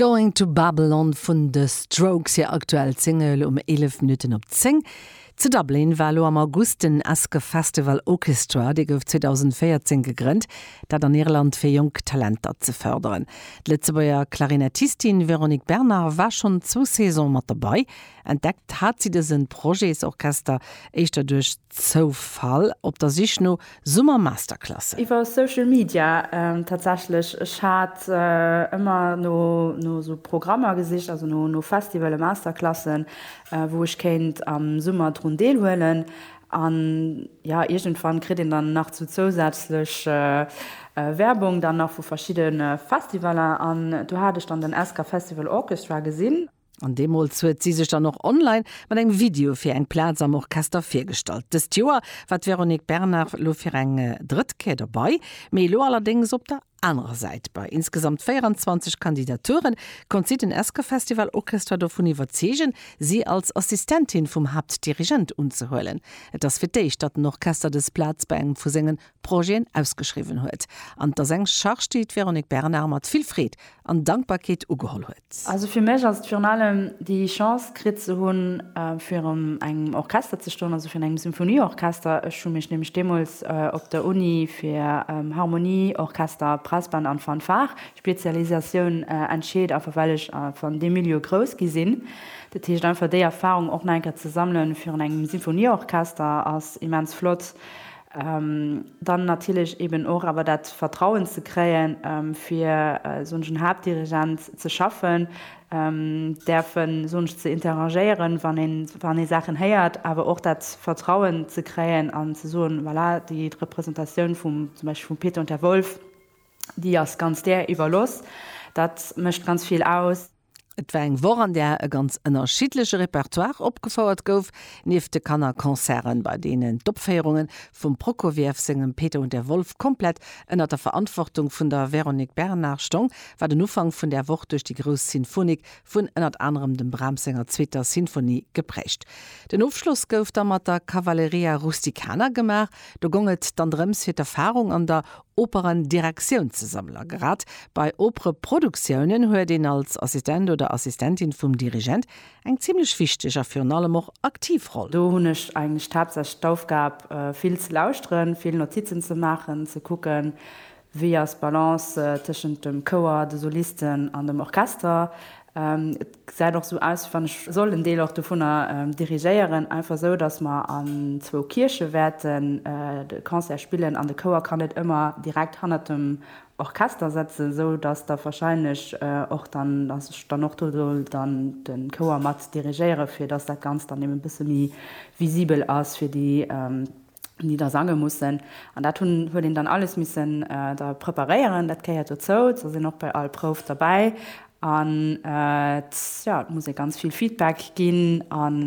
Going to Babylon vun The Strokes, hir aktuell Single um 11 Minutten op 10. Zu Dublin war elo am August den Esker Festival Ochestra, dee gouf 2014 gegrënnt, dat an Irland fir jonk Talenter ze fërderen. D'Lëtzebuerger Klarinettistin Véronique Bernard war schonn zwou Saisone mat dobäi. Entdeckt hat si dëse Projetsorchester éischter duerch. Zoufall op der Sich no Summer-Masterclassen. Iwwer Social Media tatsächlech. Ech hat ëmmer no esou Programmer gesicht, also no Festivale, Masterclassen, wou ech kéint am Summer drun deelhuelen. An jo, iergendwann kritt een dann nach sou zousätzlech Werbung dann nach vu verschidde Festivaler. An do hat ech dann den SK Festival Orchestra gesinn. An deemools huet si sech dann och online mat engem Video fir eng Plaz am Orchester virgestallt. Dëst Joer war d'Véronique Bernard lo fir eng drëtt Kéier dobei, mee elo allerdéngs op der anerer Säit. Bei insgesamt 24 Kandidaturen konnt si den Esker Festival Orchestra dovun iwwerzeegen, si als Assistentin vum Haaptdirigent unzehuelen. Et ass fir d'éischt, datt den Orchester dës Plaz bei engem vu sengen Projeten ausgeschriwwen huet, an et ass eng Charge, déi d'Véronique Bernard mat vill Freed an Dankbarkeet ugeholl huet. Also fir mech ass et virun allem déi Chance kritt ze hunn, virun engem Orchester ze stoen, also virun engem Symphonieorchester. Ech hu mech nämlech deemools op der Uni fir Harmonie, Orchester, Brassband an Fanfare, Spezialisatioun, entscheet, einfach well ech einfach an deem Milieu grouss gi sinn. Dat heescht einfach déi Erfahrung och nach eng Kéier ze sammelen virun engem Symphonieorchester ass immens flott. Dann natierlech eben och awer dat Vertrauen ze kréien, fir soen ech en Haaptdirigent ze schaffen, däerfen soen ech ze interagéieren, wann ee Saachen héiert, awer och dat Vertrauen ze kréien an ze soen, voilà, déi Representatioun vum zum Beispill vum Peter und der Wolf, déi ass ganz där iwwerlooss. Dat mécht ganz vill aus. Et war eng Woch an där e ganz ënnerschiddleche Repertoire opgefouert gouf. Nieft de Kannerconcerten, bei deenen d'Opféierunge vum Prokofiev sengem Peter und der Wolf komplett ënner der Verantwortung vun der Véronique Bernard stong, war den Ufank vun där Woch duerch déi grouss Sinfonik vun ënnert anerem dem Brahms senger zweeter Sinfonie geprägt. Den Ofschloss gouf da mat der Cavalleria Rusticana gemaach. Do gong et dann drëms fir d'Erfarung an der Operendirektioun ze sammler. Grad bei Opereproduktioune huet een als Assistent oder Assistentin vum Dirigent eng zimlech wichteg a virun allem och aktiv Roll. Do hunn ech eigentlech d'haaptsächlech d'Aufgab, vill ze lauschteren, vill Notizen ze maachen, ze kucken, wéi ass d'Balance tëschent dem Chouer, de Solisten an dem Orchester, Et gesäit och esou aus, wéi wann ech soll en Deel och dovunner dirigéieren, einfach esou, dass mer an zwou Kierche wäerten de Concert spillen an de Chouer kann net ëmmer direkt hannert dem Orchester sëtzen, esou dass da wahrscheinlech och dann, dass ech dann och do soll dann de Chouer mat dirigéiere fir dass dat Ganzt dann eben e bësse méi visibel ass fir déi déi da sange mussen. An dat hunn, huet een dann alles missen da preparéieren, dat gehéiert dozou. Se sinn och bei all Prouf derbäi an et, jo, et muss ee ganz vill Feedback ginn an,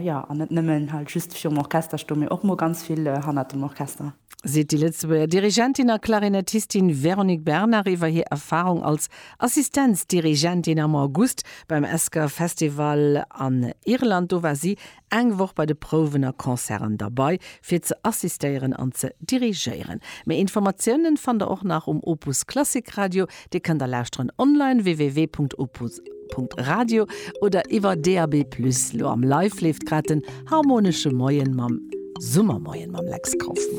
jo, an net nëmmen halt just virum Orchester stoen, mee och mol ganz vill hannert dem Orchester. Seet déi Lëtzebuerger Dirigentin a Klarinettistin Véronique Bernard iwwer hir Erfarung als Assistenzdirigent-in am August beim Esker Festival an Irland. Do war si Eng Woch bei de Prouwen a Concerten derbei fir ze assistéieren an ze dirigéieren. Méi Informatiounen fannt der och nach um Opus Klassik Radio, dee kënnt der lauschteren online www.opus.radio oder iwwer DAB+. Lo am Live leeft grad den Harmonesche Moien mam Summermoien mam Lex Kauffmann.